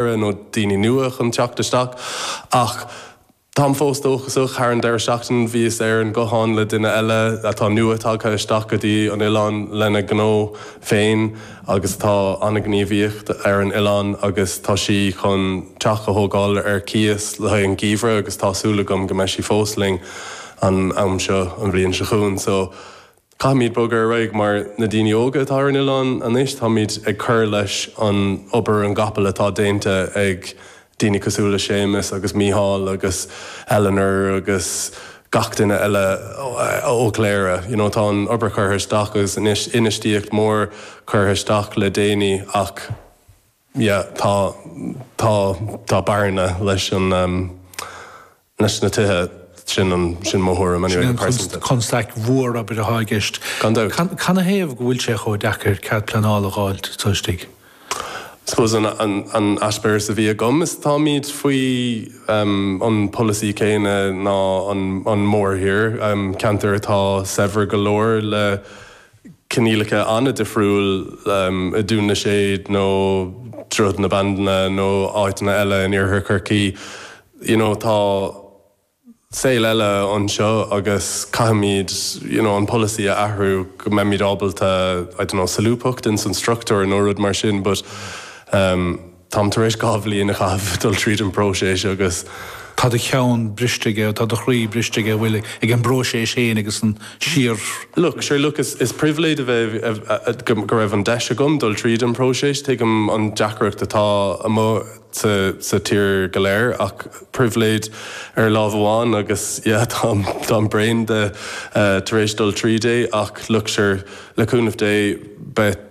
deireadh, nó daoine nua chun teacht isteach. Ach táim fós dóchasach. Thar an deireadh seachtaine bhíos ar an nguthán le duine eile atá nua tagtha isteach go dtí an oileán lena gnó féin agus atá an-ghníomhaíocht ar an oileán agus tá sí chun teach a thógáil ar cíos le haghaidh an geimhreadh agus tá súil agam go mbeidh sí fós linn an am seo an bhliain seo chugainn. So. Caithfimid bogadh ar aghaidh mar na daoine óga atá ar an oileán anois, táimid ag cur leis an obair na gcapall atá déanta ag daoine cosúil le Séamus agus Mícheál agus Eleanor agus gach duine eile ó Chléire you know tá an obair curtha isteach agus infheistíocht mór curtha isteach le déanaí ach yeah tá tá tá bearna leis an leis na tithe, sin mo thuairim anyway, go pearsanta. Sin an chonstaic mhór, abair, atá i gceist. Gan dabht. Canathaobh go bhfuil sé chomh deacair cead pleanála a dh'fháil taobh istigh? I suppose an eispéireas a bhí agam is táimid faoi an pholasaí céanna leis an mórthír, ceantair atá saibhir go leor le coinníollacha an-difriúil i Dún na Séad nó Droichead na Bandáine nó áiteanna eile in Iarthar Chorcaí. You know, tá saol eile anseo agus caithfimid, you know, an polasaí a athrú go mbeimid ábalta, I don't know, solúbthacht ins an struchtúr nó rud mar sin but, um, Táim tar éis dhá bhliain a chaitheamh ag dul tríd an bpróiseas agus. tá do cheann briste aige agus tá do chroí briste aige, bhuel, ag an bpróiseas féin agus ansin. Look, sure, look, is pribhléid a bheith, go raibh an deis agam dul tríd an bpróiseas, tuigim an deacracht atá amuigh sa tír go léir ach pribhléid ar láimh amháin agus yeah, táim, táim bréan de tar éis dul tríd é ach look, sure, le cúnamh Dé, beidh.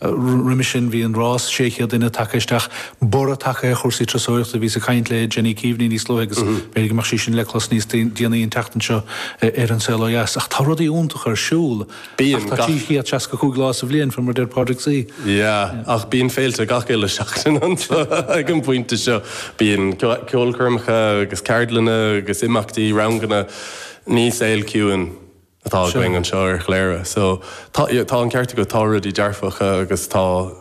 Roimhe sin bhí an rás 600 duine tagtha isteach, borradh tagtha ar chúrsaí turasóireachta, bhíos ag caint le Jenny Keaveney níos luaithe agus b'fhéidir go mbeidh sé sin le clos níos déanaí an tseachtain seo ar An Saol Ó Dheas. Ach tá rudaí iontacha ar siúl, ach tá 365 lá sa bhliain, faoi mar a deir Pádraig. Yeah, ach bíonn féilte gach uile seachtain anseo ag an bpointe seo. Bíonn ceolchoirmeacha agus ceardlanna agus imeachtaí, ranganna. Ní saol ciúin. atá againn anseo ar Chléire. So, tá, tá an ceart agat, tá rudaí dearfacha agus tá,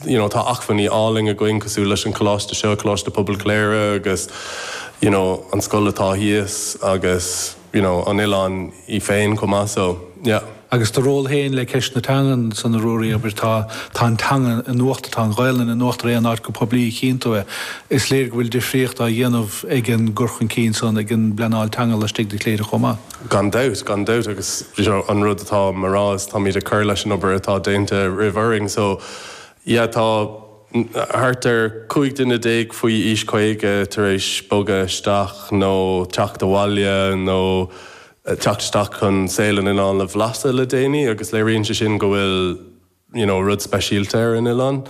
you know, tá acmhainní álainn againn cosúil leis an coláiste seo, Coláiste Pobail Chléire agus, you know, an scoil atá thíos agus, you know, an oileán í féin chomh maith. So, yeah. Agus do ról féin le ceist na teangan san, a Ruairí, obair, tá, tá an teanga in uachtar, tá an Ghaelainn in uachtar aon áit go poiblí, a chíonn tú é. Is léir go bhfuil difríocht á dhéanamh ag an gcur chun cinn san, ag an bpleanáil teanga laistigh de Chléire chomh maith. Gan dabht, gan dabht agus an rud atá mé a rá is táimid ag cur leis an obair atá déanta roimh orainn so yeah tá thart ar 15 duine faoi aois 50 tar éis bogadh isteach nó teacht abhaile nó teacht isteach chun saol an oileáin a bhlaiseadh le déanaí agus léiríonn sé sin go bhfuil you know rud speisialta ar an oileán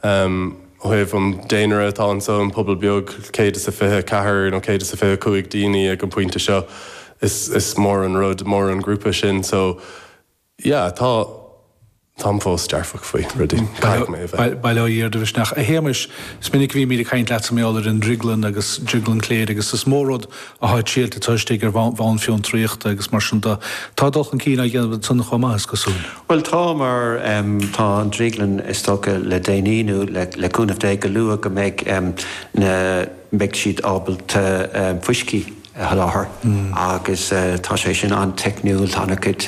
em ó thaobh an daonra atá anseo an pobal beag céad is a fiche a ceathair nó céad is a fiche cúig daoine ag an bpointe seo is is mór an rud mór an grúpa sin so yeah tá táim fós dearfach faoi rudaí caithfidh mé a bheith. Bail ó Dhia ar do mhisneach. A Shéamais, is minic a bhímid ag caint leatsa mar gheall ar an drioglann agus drioglann Cléire agus is mó rud atá triailte agat istigh ar bhonn fiontraíochta agus mar sin de. Tá dul chun cinn á dhéanamh ansan chomh maith, is cosúil. Bhuel, tá, mar tá an drioglann, is dócha, le déanaí, nó le cúnamh Dé, go luath go mbeidh na, mbeidh siad ábalta fuiscí a sholáthar agus tá sé sin an-teicniúil, tá ana-chuid,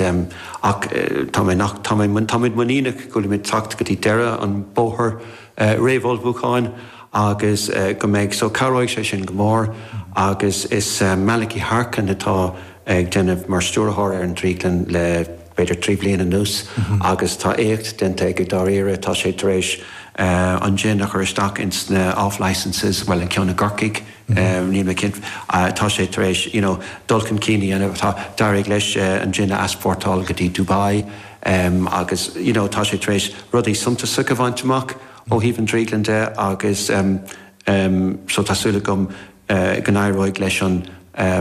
ach tá mé, ach, tá mé, táimid muiníneach go bhfuilimid ag teacht go dtí deireadh an bhóthair. réamhullmhúcháin agus go mbeidh, so cabhróidh sé sin go mór agus is Malachy Harkin atá ag déanamh mar stiúrthóir ar an Drioglann le b'fhéidir trí bliana anuas agus tá éacht déanta aige dáiríre, tá sé tar éis an jin a chur isteach ins na off licences, bhuel an ceann i gCorcaigh, níl mé cinnte, tá sé tar éis you know dul chun cinn a dhéanamh, tá d'éirigh leis an jin a easpórtáil go dtí Dubai, Agus you know tá sé tar éis rudaí suntasacha a bhaint amach ó thaobh an drioglann de agus so tá súil agam go n-éireoidh leis an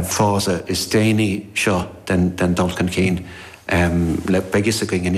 phase is déanaí seo den dul chun cinn. Beidh a fhios againn anois.